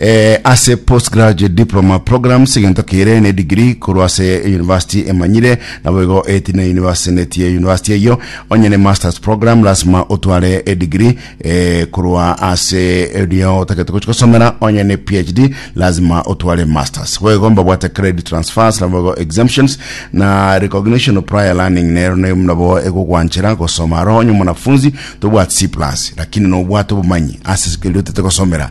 Ee, ase postgraduate diploma programs egento kere ne degree korwa ase university emanyire, naboigo eti ne university netie university eyio onye ne masters program lasima otware edegree eh, korwa ase erio otagete gochi gosomera onye ne PhD lazima otware masters boigo mbabwate credit transfers naboigo exemptions na recognition of prior learning nero ne nabo egogwanchera gosoma aro onye mwanafunzi tobwati C+ lakini nobwate obomanyi ase eri otete gosomera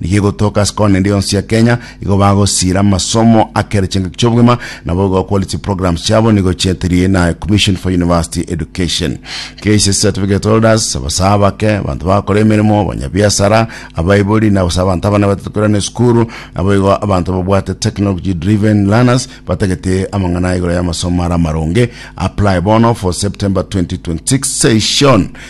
Nigo igotoka ase kona ende yonsi ya Kenya, igo bagosira amasomo akere chingaki chi'obogima, nabo igo bakore chiprograms chiabo nigo chietiri na Commission for University Education. Cases certificate holders, abasae abake, abanto bagakora emeremo, abanyabiasara, abaibori, na gose abanto abana batete koirana esukuru, nabo igo abanto babwate technology driven learners batagete amang'ana aya igoro y'amasomo are amaronge. Apply bono for September 2026 session.